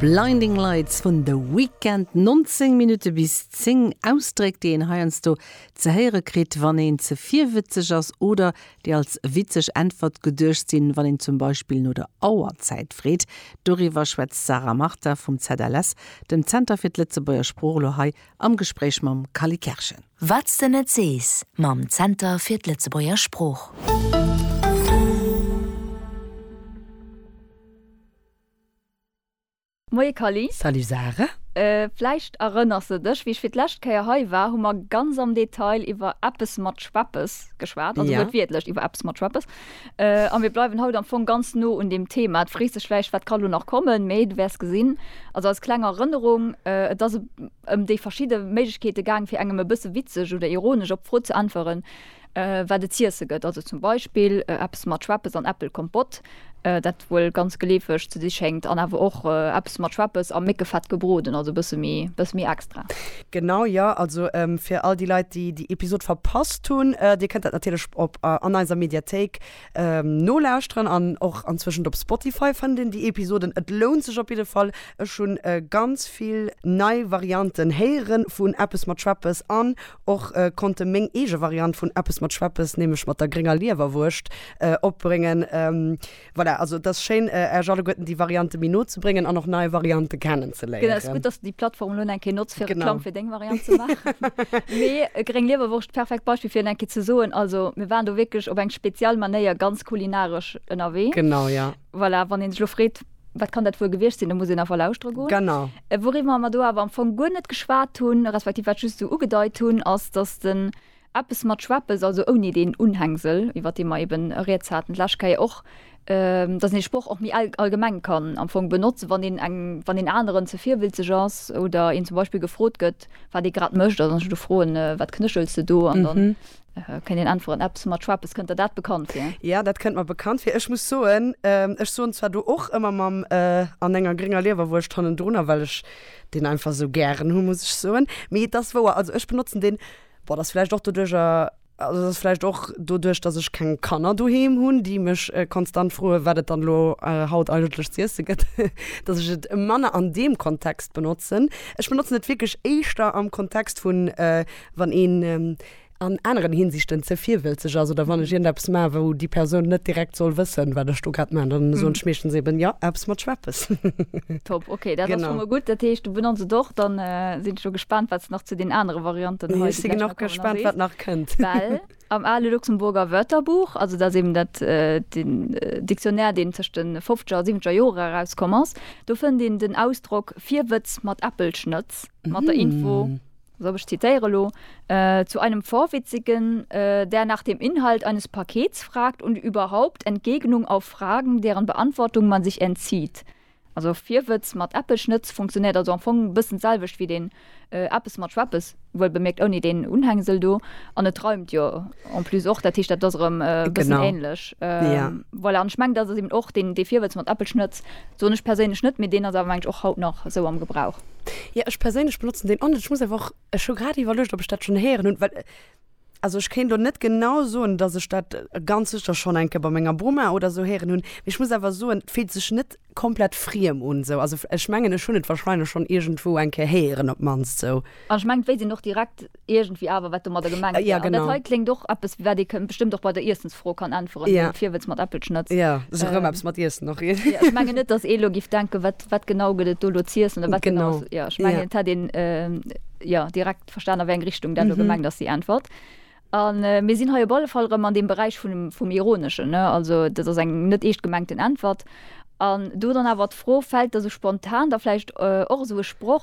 Blinding Lights vun The Weeknd, 19 Minutte bis 10. Ausdréck, déi een heiansdo ze héiere kritt, wann een ze virwëtzeg ass oder déi als witzeg Äntwert geduecht sinn, wann een zum Beispill no der Auerzäit freet. Doriwwer schwätzt d'Sarah Martha vum ZLS, dem Zenter fir d'Lëtzebuerger Sprooch, elo hei am Gespréich mam Kally Kerschen. Wat s de net sees mam Zenter fir d'Lëtzebuerger Sprooch. Moie Kally. Salut Sarah. Vläicht erënners de dech, wéi ech fir d'lescht Kéier hei war, hu mer ganz am Detail iwwer eppes mat Schweppes geschwat, also wuertwiertlech iwwer eppes mat Schweppes. A mir bleiwen haut am Fong ganz no un deem Thema. Et frees dech vläicht, wat ka lo nach kommen, mee du wäers gesinn, also als kleng Erënnerung, et ass e. ëm déi verschidde Méiglechkeete gaang, fir engem e bësse witzeg oder ironesch op d'Fro ze äntweren, wat et z'iesse gëtt. Also zum Beispill eppes mat Schweppes an Äppelkompott, dat wuel ganz geleefeg ze si schéngt, an awer och eppes mat Schweppes a Méckefett gebroden, also e bësse méi extra. Genau, jo. Also fir all déi Leit, déi déi Episod verpasst hunn, Dir kënnt dat natierlech op an eiser Mediathéik Nolauschteren an och anzwëschent op Spotify fënnt een déi Episoden. Et lount sech op jidde Fall. Ech hunn ganz vill nei Varianten héiere vun Eppes mat Schweppes an och konnte meng eege Variant vun Eppes mat Schweppes, nämlech mat der grénger Liewerwurscht, opbréngen. Voilà, also et ass schéin, Äerch alleguerten déi Variante méi no ze bréngen an och nei Variante kennen. ze léieren. Genau, ass gutt dass de déi Plattform elo eng Kéier notz fir Reklamm fir deng Variant ze maachen. Mee e Gréng Liewerwurscht, perfekt Beispill fir en eng Kéier ze soen, also mir waren do wierklech op eng speziell Manéier ganz kulinaresch ënnerwee. Genau, ja. Voilà, wann een sech elo freet, wat kann dat wuel gewiescht sinn, da muss een einfach lauschtere goen. Genau. Wouriwwer mer do awer am Fong guer net geschwat hunn, respektiv wat just esou ugedeit hunn, ass dass de Eppes mat Schweppes, also ouni deen Unhängsel, iwwert dee mer eben rieds haten d'lescht Kéier och, dass een de Sproch och méi allgemeng kann am Fong benotzen, wann een eng, wann een aneren ze virwilzeg ass oder een zum Beispill gefrot gëtt, wat ee grad mécht, also wann ech do froen, Wat knéchels de do? an dann kënnt een äntweren, Eppes mat Schweppes. Kënnt der dat bekannt vir? Jo, dat kënnt mer bekannt vir. Ech muss soen, ech soen zwar do och ëmmer mam an enger grénger Liewerwurscht hannendrunner, well ech deen einfach esou gären hu, muss ech soen. Mee et ass wouer, also ech benotzen deen Boah, dat ass vläicht och doduerch, also dat ass vläicht och doduerch, datt ech keng Kanner doheem hunn, déi mech konstant froe wat et dann elo haut eigentlech z'iesse gëtt, datt ech et manner an deem Kontext benotzen. Ech benotzen et wierklech éischter am Kontext vun, wann een an aneren Hinsichten ze virwëlzeg ass oder wann ech iergendeppes maachen, wou déi Persoun net direkt soll wëssen, wat ech do grad maachen. Dann soen ech meeschtens eben, Jo, eppes mat Schweppes. Top, okay, dat ass schonn mol gutt. Dat heescht. Benotzt et och, dann sinn ech lo gespaant wat nach zu den anere Varianten hei. Ech si gen och gespaant wat nach kënnt. Well am ale Luxemburger Wörterbuch, also dat ass eben dat den Dictionnaire deen tëscht de fofzeger a siwwenzeger Jore erauskomm ass, do fënnt een den Ausdrock Virwëtz mat Äppelschnëtz mat der Info, also ech zitéiere lo, Zu einem Vorwitzigen, der nach dem Inhalt eines Pakets fragt und überhaupt Entgegnung auf Fragen, deren Beantwortung man sich entzieht, Also Virwëtz mat eppech net funktionéiert, also am Fong bëssen d'selwecht wéi deen eppes mat schweppes, wuel bemierkt ouni deen Unhängsel do, an et reimt jo en plus och, dat heescht dat ass erëm e bëssen ähnlech. Voilà, an ech mengen dat ass eben och deen, dee Virwëtz mat eppech net soen ech perséinlech net, mee deen ass awer mengen ech och haut nach esou am Gebrauch. Jo, ech perséinlech benotzen deen och net. Ech muss awer och, ech hu grad iwwerluecht ob ech dat schonn héieren hunn, well. Also ech kéint elo net genau soen, dass ech dat ganz sécher schonn eng Kéier bei menger Boma oder esou héieren hunn, mee ech muss awer soen, et fillt sech net komplett friem un esou. Also ech mengen, ech hunn et warscheinlech schonn iergendwou eng Kéier héieren op d'mannst esou. An ech mengen, d'wéisst een och direkt iergendwéi awer, wat domadder gemengt wär. An dat hei kléngt och eppes, wat ee bestëmmt och bei der Iessensfro kann äntweren, den Virwëtz mat Äppelschnëtz. Jo, ass erëm eppes mat Iessen och. Ech mengen net, dass ee elo géif denken, wat genau gëtt et do elo z'iessen oder wat genau ass. Jo, ech mengen, et hätt een direkt. verstanen, a wéi eng Richtung dat elo gemengt ass, déi Äntwert. A mir sinn hei op alle Fall erëm an deem Beräich vun dem, vum Ironeschen, ne? Also dat ass eng net eescht gemengten Äntwert. An do dann awer d'Fro, Fält der esou spontan da vläicht och esou e Sproch?